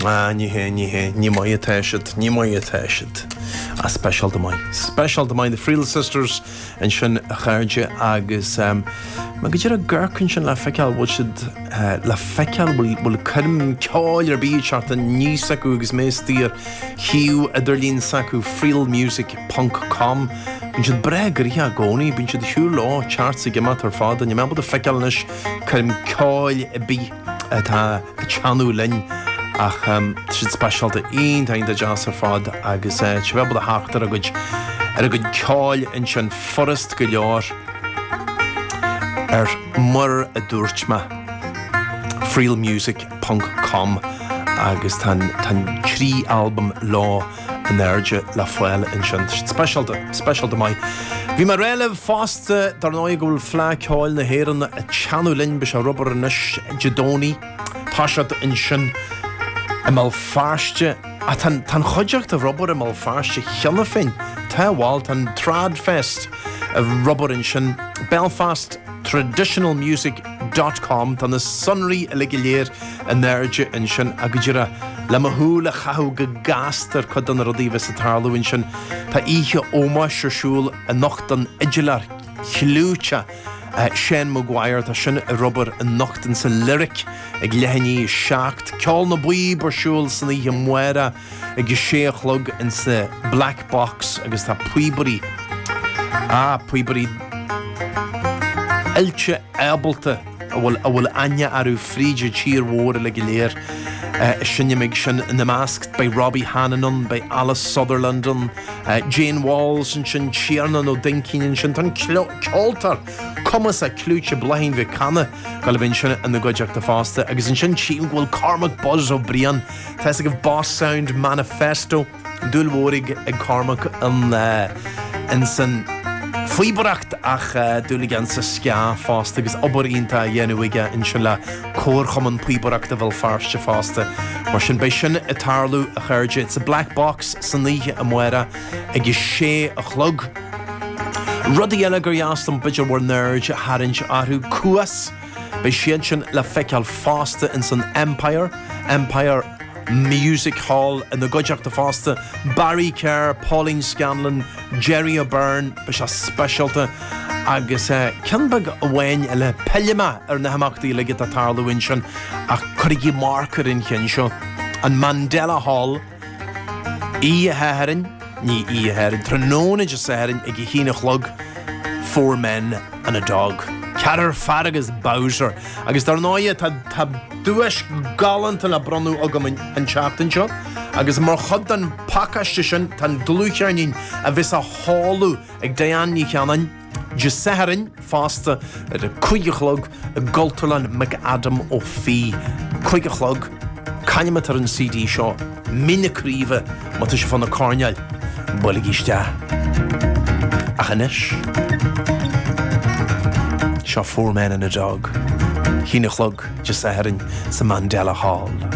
Ah, nach é, nach é, nach maith atá siad, nach maith atá siad. Ah, speisialta maith, speisialta maith, The Friel Sisters ansin, a chairde, agus mé go díreach ag amharc ansin le feiceáil, bhfuil siad le feiceáil, bhfuil, bhfuil coirm ceoil ar bith ag teacht aníos acu agus mé istigh ar shuíomh idirlín s'acu, frielmusic ponc com, bíonn siad breá gnoitheach i gcónaí, bíonn siad ag siúl leo, thart is ag imeacht ar fad, níl mé ábalta feiceáil anois coirm ceoil ar bith. atá ag teannadh linn ach tá siad speisialta iontach, iontach deas ar fad agus tá sibh ábalta a theacht ar a gcuid, ar a gcuid ceoil ansin furast go leor ar mar a dúirt mé frielmusic ponc com agus tá an trí albam leo. in airde le fáil ansin. Speisialta, speisialta maith. Bhí mé ag rá libh fosta, dar ndóigh, go bhfuil Fleadh Ceoil na hÉireann ag teannadh linn. Beidh sé ar obair anois, Dé Domhnaigh. Ag toiseacht ansin i mBéal Feirste. Ach tá, tá an chuideachta ar obair i mBéal Feirste cheana féin. Tá, bhal, tá an Trad Fest ar obair ansin, Belfast Traditional Music. com Tá na sonraí uilig go léir in airde ansin agus go díreach le mo shúil a chaitheamh go gasta ar chuid de na rudaí a bheas ag tarlú ansin, tá oíche ómóis ar siúl anocht don fhidiléir clúiteach Seán Maguire, tá sin ar obair anocht in sa Lyric ag leath i ndiaidh a seacht, Ceol na bPíob ar siúl san oíche amárach, ag a sé a chlog in sa Black Box agus tá píobairí, á, píobairí oilte ábalta a bhfuil, a bhfuil aithne orthu fríd an tír mhór uile go léir. Is ina measc sin, ina measc, beidh Robbie Hannan ann, beidh Ailis Sutherland ann, Jane Walls ansin, Tiarnán Ó Duinnchinn ansin, tá an ceoltóir cumasach clúiteach Bláithín Mhic Cana ag gabháil a bheith ansin ina gcuideachta fosta agus ansin tchím go bhfuil Cormac Buzz Ó Briain, Tá a fhios agaibh Boss Sound Manifesto, dúil mhór ag, ag Cormac ins an phíobaireacht ach dúil aige insa ska fosta agus obair iontach á dhéanamh aige ansin le Comharchumann Píobaireachta Bhéal Feirste fosta. Mar sin beidh sin ag tarlú, a chairde, insa Black Box san oíche amárach ag a sé a chlog. Rudaí eile gur dheas dom b'fhéidir bhur n-aird a tharraingt orthu, Cuas! Beidh siad sin le feiceáil fosta ins an Empire, Empire Music Hall, ina gcuideachta fosta, Barry Kerr, Pauline Scanlon, Gerry O'Beirne, beidh sé speisialta, agus ceann beag amháin eile, pillfidh mé ar na himeachtaí uilig atá ag tarlú ansin, ach cuirigí marc ar an cheann seo, an Mandela Hall. Oíche Shathairn, ní oíche Shathairn, tráthnóna Dé Sathairn ag a haon a chlog, Four Men and a Dog, Ceathrar Fear agus Bowser, agus dar ndóigh tá duais galánta le bronnadh agam an tseachtain seo agus mar chuid den phacáiste sin tá an dlúthcheirnín a bheas á sheoladh ag Diane Ní Chanainn, Dé Sathairn fosta ar a cúig a chlog i gCultúrlann McAdam Ó Fiaich, cúig a chlog, c'ainm atá ar an CD seo, Mín na Craoibhe, má tá sibh fá na coirneáil, buailigí isteach. Ach anois, seo Four Men and a Dog, haon a chlog Dé Sathairn sa Mandela Hall.